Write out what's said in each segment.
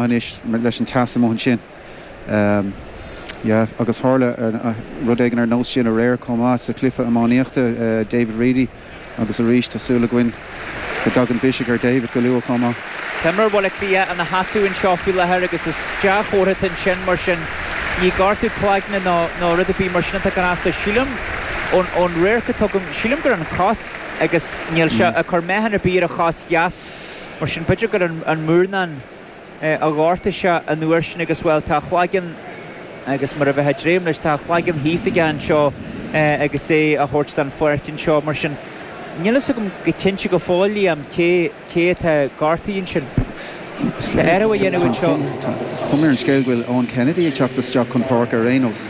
anois leis an teas amuigh ansin. Yeah, agus tharla rud éigin ar nós sin aréir chomh maith sa chluiche iománaíochta, David Reidy agus arís tá súil againn go dtiocfaidh biseach ar David go luath chomh maith. Tá imreoir Bhaile Átha Cliath ina sheasamh anseo faoi láthair agus is dea-chomhartha é sin mar sin ní gortú cloigne nó rud ar bith mar sin atá i gceist. Sílim ón radharc atá agam, sílim gur an chos agus níl sé ag cur meáchan ar bith ar a chos dheas. Mar sin, b'fheidir gur an múrnáin a ghortaigh sé an uair sin agus, bhuel, tá a chlaigeann, agus mar a bheifeá ag dréim leis, tá a chlaigeann thíos aige annseo agus é á thabhairt de'n pháirc annseo. Mar sin, níl fhios agam go cinnte go fóill, Liam, cé, cé atá gortaithe annsin. Tá athrú á dhéanamh annseo. Tá cuma ar an scéal go bhfuil Eoin Kennedy ag teacht isteach chun páirce ar a shon.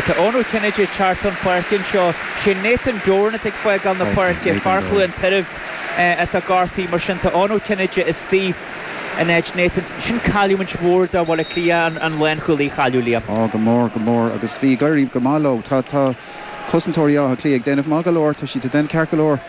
Tá Eoin Ó Cinnéide ag teacht chun páirce annseo. Sé Nathan Doran atá ag fágáil na páirce, fear Chluain Tairbh atá gortaithe, mar sin tá Eoin Ó Cinnéide istigh in áit Nathan. Sin cailliúint mhór do Bhaile Átha Cliath, an lánchúlaí a chailliúint, Liam. Á, go mór, go mór agus bhí ag éirí go maith leo. Tá cosantóirí Átha Cliath ag déanamh maith go leor, tá siad ag déanamh ceart go leor.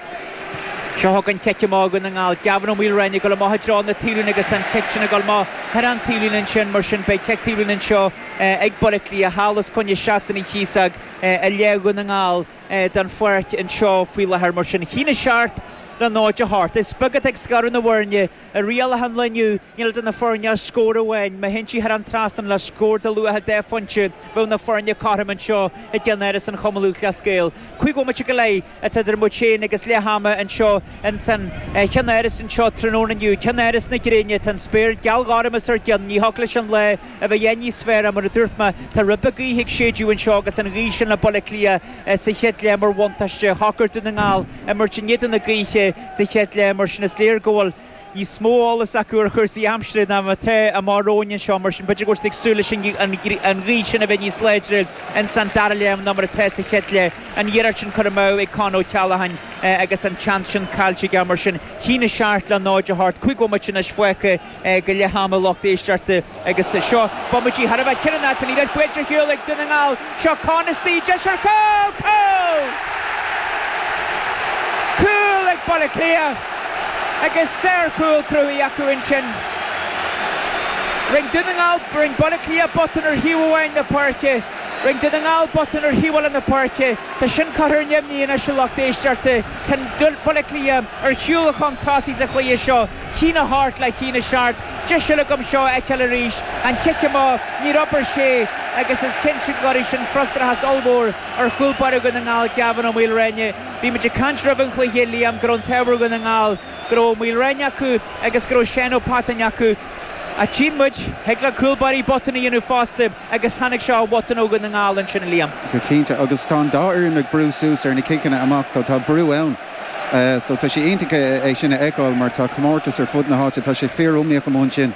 Seo chugainn cic amach Dhún na nGall. Gavin Ó Maoilriain ag dul amach i dtreo na taobhlíne agus tá an cic sin ag dul amach thar an taobhlíne ansin, mar sin beidh cic taobhlíne anseo ag Baile Átha Cliath, thall os coinne seastán Uí Chíosóg. i leath Dhún na nGall den pháirc anseo faoi láthair. Mar sin, a haon a seacht le nought a hocht. Is beag atá ag scaradh na bhfoirne. I rialacha an lae inniu, níl idir na foirne ach scór amháin. Má thiontaítear an trasnán le scór de luach dhá phointe, bheadh na foirne cothrom anseo i gceannáras an Chumainn Lúthchleas Gael. Cúig bhomaite go leith. atá idir muid féin agus leath ama anseo ins an cheannáras anseo tráthnóna inniu, ceannáras na gréine. Tá an spéir geal ghorm os ár gcionn, ní thiocfadh leis an lá a bheith a dhath níos fearr mar a dúirt mé. Tá ribe gaoithe ag séideadh anseo agus an ghaoth sin le Baile Átha Cliath sa chéad leath mar bhuntáiste. Shocair Dún na nGall imirt in éadan na gaoithe sa chéad leath mar sin is léir go bhfuil níos mó eolas acu ar chúrsaí aimsire ná mar atá againne anseo, mar sin b'fhéidir go bhfuil siad ag súil leis an ghaoth sin a bheith níos láidre ins an dara leath ná mar atá sa chéad leath. An iarracht sin curtha amú ag Con O'Callaghan agus an tseans sin caillte aige, mar sin a haon a seacht le 0 a hocht, cúig bhomaite anois fágtha go leith ama lucht éisteachta. Agus seo bomaití thar a bheith cinniúnach, tá an liathróid bainte ar shiúl ag Dún na nGall. Seo Conn istigh, deis ar chúl! Cúl! Cúl ag Baile Átha Cliath agus sárchúl cruthaithe acu ansin. Rinn Dún na nGall, rinn Baile Átha Cliath botún ar thaobh amháin na páirce, rinn Dún na nGall botún ar thaobh eile na páirce. Tá sin curtha ar neamhní anois a lucht éisteachta. Tá Baile Átha Cliath ar shiúl chun tosaigh sa chluiche seo. A haon a hocht le haon a seacht, deis eile agam seo a fheiceáil arís, an cic amach níor obair sé agus is cinnte go gcuirfidh sin frustrachas ollmhór ar chúl báire Dhún na nGall, Gavin Ó Maoilreáine. Bhí muid ag caint roimh an chluiche, a Liam, go raibh an t-ádh ar Dhún na nGall go raibh Ó Maoilreáine acu agus go raibh Seán Ó Pattáin acu. Ach tchíonn muid, thig le cúl báirí botúin a dhéanamh fosta agus tháinig seo ó bhotún ó Dhún na nGall ansin, a Liam. Go cinnte, agus tá an dá fhoireann ag brú suas ar na ciceanna amach, tá brú ann. So tá sé iontach é sin a fheiceáil mar tá comórtas ar fud na háite. Tá sé fíor-iomaíoch amuigh ansin.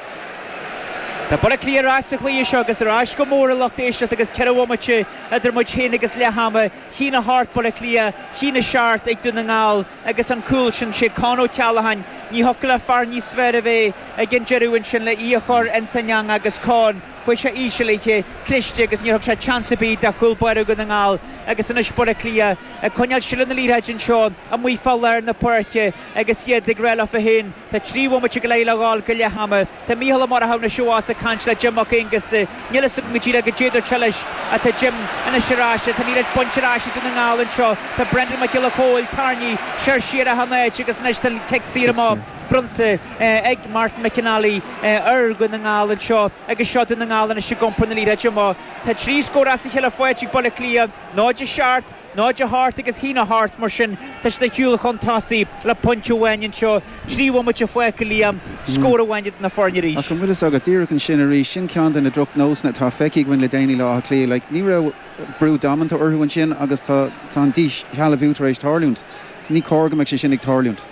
Tá Baile Átha Cliath ar ais sa chluiche seo agus ar ais go mór a lucht éisteachta agus ceithre bhomaite idir muid féin agus leath ama. A haon a hocht Baile Átha Cliath, a haon a seacht ag Dún na nGall agus an cúl sin. Sé Con Ó Ceallacháin, ní thiocfadh le fear níos fearr a bheith ag an deireadh ansin le í a chur ins an eang agus Con, chuaigh sé íseal léithi, cliste agus níor thug sé chance ar bith do chúl báire Dhún na nGall agus anois Baile Átha Cliath. Ag coinneáil seilbh na liathróide anseo amuigh fá lár na páirce agus iad ag rá leo féin, 'Tá trí bhomaite go leith le dhul go leath ama. Tá Mícheál Ó Murchú na Seabhás ag caint le Jim Mac Aonghusa. 'Níl a fhios agam go díreach goidé dúirt sé leis, ach tá Jim anois ar ais. Tá an liathróid bainte ar ais ag Dún na nGall anseo. Tá Brendan Mac Giolla Chomhaill, tarraingíodh soir siar achan áit agus anois tá an cic saor amach bronnta ag Martin McNally ar Dhún na nGall anseo agus seo Dún na nGall anois ag iompar na liathróide amach. Tá trí scór as a cheile faighte ag Baile Átha Cliath. Náid a seacht, náid a hocht agus a haon a hocht mar sin tá siad ar shiúl chun tosaigh le pointe amháin anseo, trí bhomaite fágtha a Liam, scór amháin idir na foirne arís. Ach an bhfuil fhios agat, díreach ansin arís, sin ceann de na droch nósanna atá feicthe againn le déanaí le Átha Cliath, like ní raibh brú damanta orthu ansin agus tá an díshealbhú tar éis tarlúint, ní cóir go mbeadh sé sin ag tarlúint,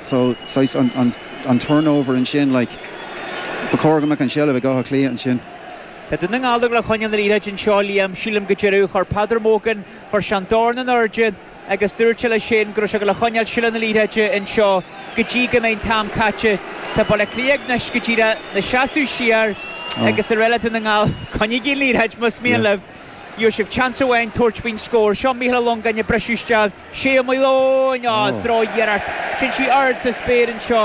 so saghas an turnover ansin like, ba chóir go mbeadh an seilbh ag Átha Cliath ansin. Tá Dún na nGall ag gabháil a choinneáil na liathróide anseo, Liam. Sílim go deireadh chuir Peadar Mogan, chuir sé an dorn in airde agus dúirt sé leis sin go raibh siad ag gabháil a choinneáil seilbh na liathróide anseo go dtí go mbeidh an t-am caite. Tá Baile Átha Cliath anois go díreach ina seasamh siar agus ag rá le Dún na nGall, coinnígí an liathróid más mian libh. Gheobhaidh sibh chance amháin tabhairt faoin scór. Seo Micheál Ó Longáin ag briseadh isteach. Shay Ó Maoileoin! Á, droch-iarracht. Sin sí ard sa spéir anseo.